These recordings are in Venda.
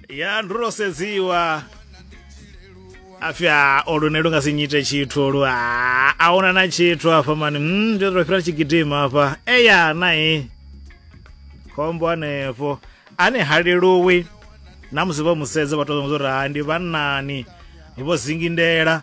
ya ndi ro sedziwa afhi a o lune lu nga si nyite tshithu lu a a huna na tshithu afha mani mm, ndi ro fhira tshigidima afha eya nai khombo hanefho ane ha leluwi na musi vho musedza vha tou zwa uri ha ndi vhannani vho zingindela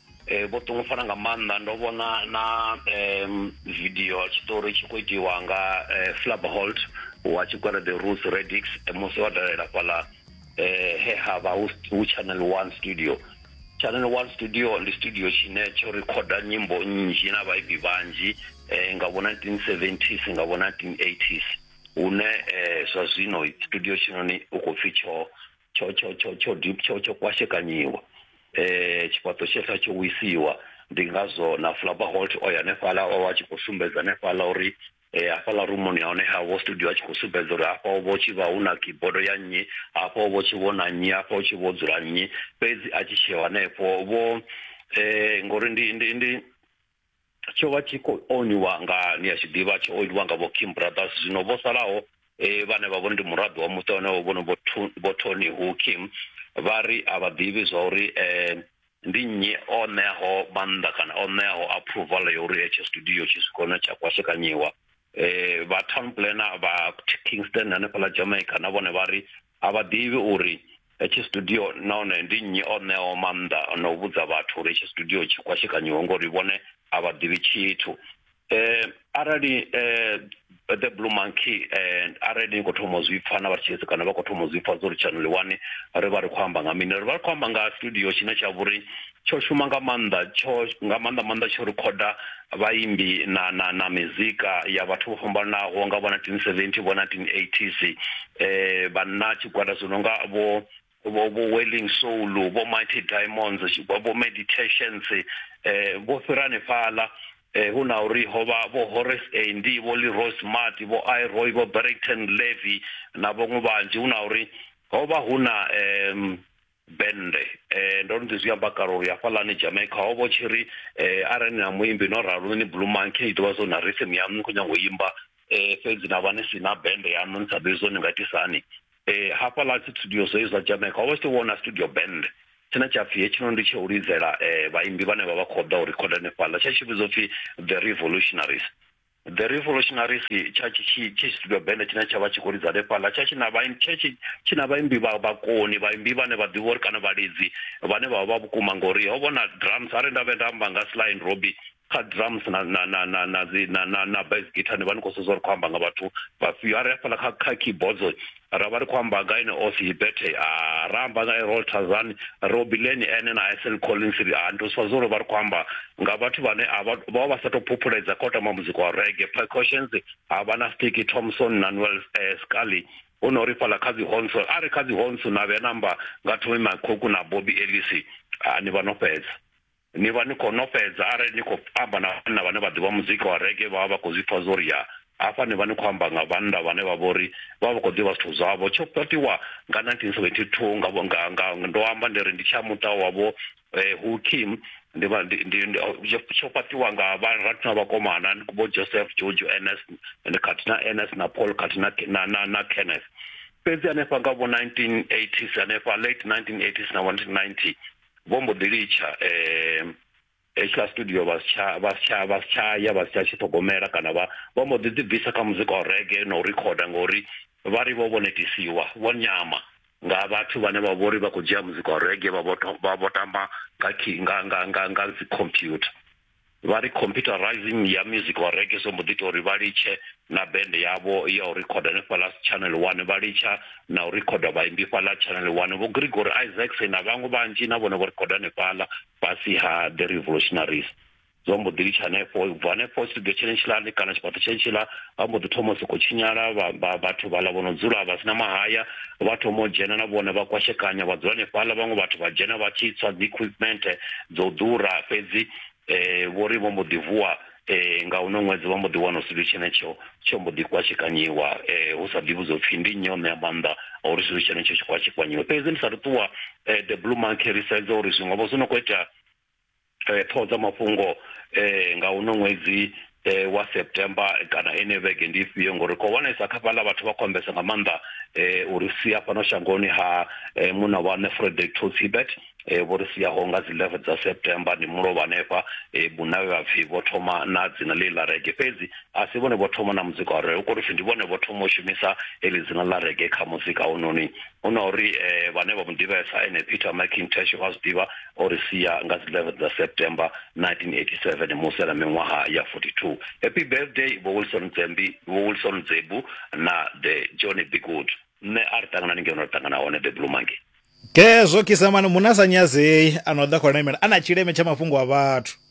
Eh, vho ṱungufhala nga maanḓa ndo vhona na um video tshiṱori tshi khou itiwa nga eh, flabholt wa tshikwere the ruth radix eh, musi wa dalela fhaḽa eh, he ha vha hu channel one studio channel one studio ndi studio tshine tsho rekhoda nyimbo nnzhi na vhaibi vhanzhi eh, nga vho 1970s nga vho 1980s hune eh, zwa zwino studio tshinoni u khou pfi tsho tsho tsho tsho tsho dip- tsho tsho kwashekanyiwa eh tshifhaṱo tshetha tsho wisiwa ndi ngazwo na flabaholt o ya hanefhaḽa o vha a tshi khou sumbedza hanefhaḽa uri eh hafhaḽa rumuni ya hone havho studio a tshi khou sumbedza uri hafha ho vho tshi vha hu na kibodo ya nnyi hafha ho vho tshi vho na nnyi hafha hu tshi vho dzula nnyi fhedzi a tshi tsheo hanefho vho eh ngori ndi ndi ndi tsho vha tshi khou oniwa nga ni a tshi ḓivha tsho oniwa nga vho kim brothers zwino vho salaho um vhane vha vho ndi muraḓo wa muṱa wane vhono vho tony hu kim vha ri a vha ḓivhi zwa uri um ndi nnyi o ṋeaho maanḓa kana o ṋeaho approval ya uri hetsho studio tshi swika hone tsha kwashekanyiwa eh vha town planner vha Kingston hanefhala Jamaica na vhone vha ri a vha ḓivhi uri hetshi studio nahone ndi nnyi o ṋeaho maanḓa na u vhudza vhathu uri hetshi studio tshi kwashekanyiwe ngori vhone a vha ḓivhi tshithu eh arali eh the blue monkey eh arali ni khou thoma zwi pfha na vhatshitshisi kana vha khou thoma zwi pfha zwo ri channel 1 ri vha ri khou amba nga mini ri vha ri khou amba nga studio tshine tsha vhori tsho shuma nga maanḓa tsho nga maanḓa maanḓa tsho rikhoda vhaimbi na na na mizika ya vhathu vho fhambananaho nga vho 1970 vho 1980s eh vhanna tshigwada zwi no nga vho vho vho welling soul vho mighty diamonds vho meditations eh vho fhira hanefhaḽa eh hu na uri ho vha vho Horace Andy vho Leroy Smart vho Iroy vho Barrington Levy na vhaṅwe vhanzhi hu na uri ho vha hu na eh bennde um ndo no ḓi zwi amba kale uri hafhaḽani jamaica ho vha tshi ri um arali ni na muimbi no ralo ni blue monkey i ḓivha zwo na rhythm yaṋu ni khou nyanga u imba um fhedzi na vha ni si na bennde yaṋu ni sa ḓivhi zwo ni nga itisa hani um hafhaḽa dzi studio zwo zwa jamaica ho vha tshi to vhona studio bennde tshine tsha pfhi hetshinoni ndi tsha u lidzela um vhaimbi vhane vha vha khou ḓa u rikhoda hanefhaḽa tsha tshi vhidzwa upfhi the revolutionaries The Revolutionaries tsha tshi tshi tshi studio band tshine tsha vha tshi khou lidza hanefhaḽa tsha tshi na vha tsha tshi tshi na vhaimbi vha vhakoni vhaimbi vhane vha ḓivha uri kana vhalidzi vhane vha vha vha vhukuma ngori ho vhona drums are nda vhe nda amba nga Sly and Robbie kha drums na na na na na dzi na na na bass guitar ni vha ni khou sedza uri khou amba nga vhathu vhafhio are hafhaḽa kha kha keyboards ra vha ri khou amba nga ene osi bethe a ra amba nga erol tazan robileni ene na isel collins ri a ndo swa zwolo vha ri khou amba nga vhathu vhane a vha vha vha sa tou phuphuledza kha u tamba muzika wa rege precautions ha vha na stiki thomson na noel eh, scally hu no ri fhala kha dzi honso a ri kha dzi honso na vhe namba nga thomi makhoku na bobi elisi a ni vha no fhedza Ni vha ni khou nofhedza arali ni khou amba na vhanna vhane vha ḓivha muzika wa rege vha vha vha khou zwi pfa zwo ri ya. Hafha ni vha ni khou amba nga vhannḓa vhane vha vho ri vha vha khou ḓivha zwithu zwavho. Tsho fhaṱiwa nga 1972 nga vho nga nga ndo amba ndi ri ndi tsha muṱa wa vho Hu Kim ndi vha ndi ndi tsho fhaṱiwa nga vha rathu na vhakomana vho Joseph Jojo Ns ndi khathihi na Ns na Paul khathihi na na na na Kenneth fhedzi hanefha nga vho 1980s hanefha late 1980s na 1990 vho mbo ḓi litsha um hetshiḽa studio vha si tsha vha si tsha vha si tsha ya vha si tsha tshi ṱhogomela kana vha vha mbo ḓi ḓibvisa kha muzika wa rege na u rikhoda ngori vha ri vho vho netisiwa vho nyama nga vhathu vhane vha vhori vha khou dzhia muzika wa rege vha vho vha vho tamba nga nga nga nga nga dzi computer vha ri computerizing ya music wa reggae so mbo ḓi ita uri vha litshe na band yavho ya u rikhoda hanefhaḽa channel one vha litsha na u rikhoda vhaimbi fhaḽa channel one vho gregory isaacs na vhaṅwe vhanzhi na vhone vho rikhoda hanefhaḽa fhasi ha the revolutionaries zwo mbo ḓi litsha hanefho ubva hanefho studio tshene tshilani kana tshifhaṱo tshene tshila vha mbo ḓi thoma u sokou tshinyala vhathu vhaḽa vho no dzula vha sina mahaya vha thoma u dzhena na vhone vha kwashekanya vha dzula hanefhaḽa vhaṅwe vhathu vha dzhena vha tshi tswa dzi equipment dzo ḓura fhedzi vho ri vho mbo ḓi vuwa nga uno ṅwedzi vha mbo ḓi wana tshithu tshenetsho tsho mbo ḓi kwatshekanyiwa hu sa ḓivhi zwo pfhi ndi nnyi o ṋea maanḓa a uri tshithu tshenetsho tshi kwatshekanyiwe fhedzi ndi sa ri ṱuwa the blue monkey ri sedza uri zwiṅwe vho zwi no khou itea ṱhoho dza mafhungo nga uno ṅwedzi eh, wa september kana ene vhege ndi ifhio ngori ri khou wanesa kha fhaḽa vhathu vha khou ambesa nga maanḓa eh, uri sia fhano shangoni ha eh, muna wa ne frederick tos hibert eh, vho ri siaho nga dzi 11 dza september ndi mulovha hanefha eh, buna vhe vhapfi vho thoma na dzina ḽe ḽa rege fhedzi a si vhone vho thoma na muzika wa rege u khou ri pfi ndi vhone vho thoma u shumisa heḽi dzina ḽa rege kha muzika hononi hu na uri eh, vhane vha mu ḓivhesa ene peter mcintash vha zwi ḓivha o ri sia nga dzi 11 dza september 1987 musi a na miṅwaha ya 42 happy birthday vho wilson dzembi vho wilson dzebu na the johnny bigwood nṋe a ri ṱangana ni ngeno ri ṱangana hone the blue monkey gezwo kisamani munasanyazei a no ḓa khou lemela a na tshileme tsha mafhungo a vhathu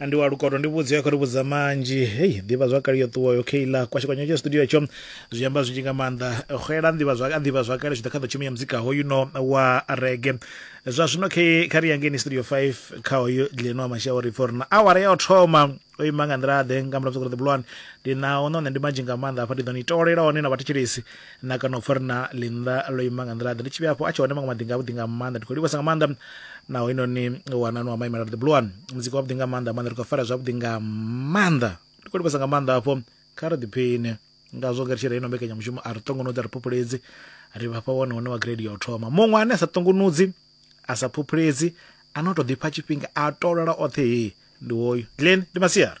ndi wa lukoto ndi vhudzi ya khou ri vhudza manzhi hei ḓivha zwakale yo ṱuwa yo kheila kwashikwanya tsha studio tsho zwi amba zwinzhi nga maanḓa xela nḓivha zwa nḓivha zwakale zwi ḓa kha ḓo tshumia muzika hoyu no wa rege zwa zwino khe kha ri yangeni studio 5 kha hoyu dileno wa mashau ri pfo rina awara ya u thoma o ima nga nḓila ḓe nga muladzo kuri the blonde ndi na ono nṋe ndi manzhi nga maanḓa afha ndi ḓo ni tolela one na vhathetshelesi na kana u pfa ri na linda lo ima nga nḓila ḓe ndi tshi vhe afho a tshi hone maṅwe maḓinga avhuḓi nga maanḓa ndi khou livhasa nga maanḓa naho inoni wanani wa maimela the blue one muzika wavhuḓi nga maanḓa maanḓa ri khou fara zwavhuḓi nga maanḓa ndi khou livhasa nga maanḓa afho kha ri ḓiphiṋe ngazwo nga ri tshi reino mbekanyamushumo a ri ṱongonudzi a ri phuphuledzi ri vhafha wone hone wa grade ya u thoma muṅwe ane a sa ṱongonudzi a sa phuphuledzi a no tou ḓifha tshifhinga a tolola oṱhe hei ndi woyu glen ndi masiari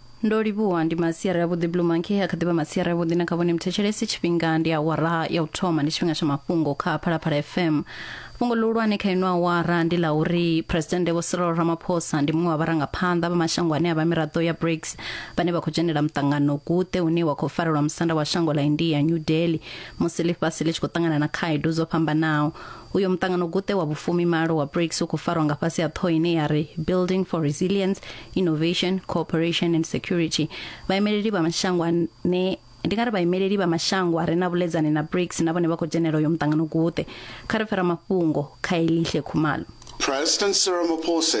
ndo livhuwa ndi masiari avhuḓi blue monkey a kha ḓivha masiari avhuḓi na kha vhone mthetshelesi tshifhinga ndi awara ya u thoma ndi tshifhinga tsha mafhungo kha phalaphala fm fhungo ḽihulwane kha ino awara ndi ḽa uri presidennde vho cyril ramaphosa ndi muṅwe wa vharangaphanḓa vha mashango ane a vha miraḓo ya brics vhane vha khou dzhenela muṱangano gute une wa khou farelwa musanda wa shango ḽa india new delhi musi ḽifhasi ḽi tshi khou ṱangana na khaedu dzo fhambanaho uyo muṱangano gute wa vhufumi malo wa brics u khou farwa nga fhasi ha ṱhoho ine ya ri building for resilience innovation cooperation and security vhaimeleli vha mashango ane ndi nga ri vhaimeleli vha mashango a re na vhuledzani na brics na vhone vha khou dzhenela uyo muṱangano guṱe kha ri fera mafhungo kha elihle khumalo President Cyril Ramaphosa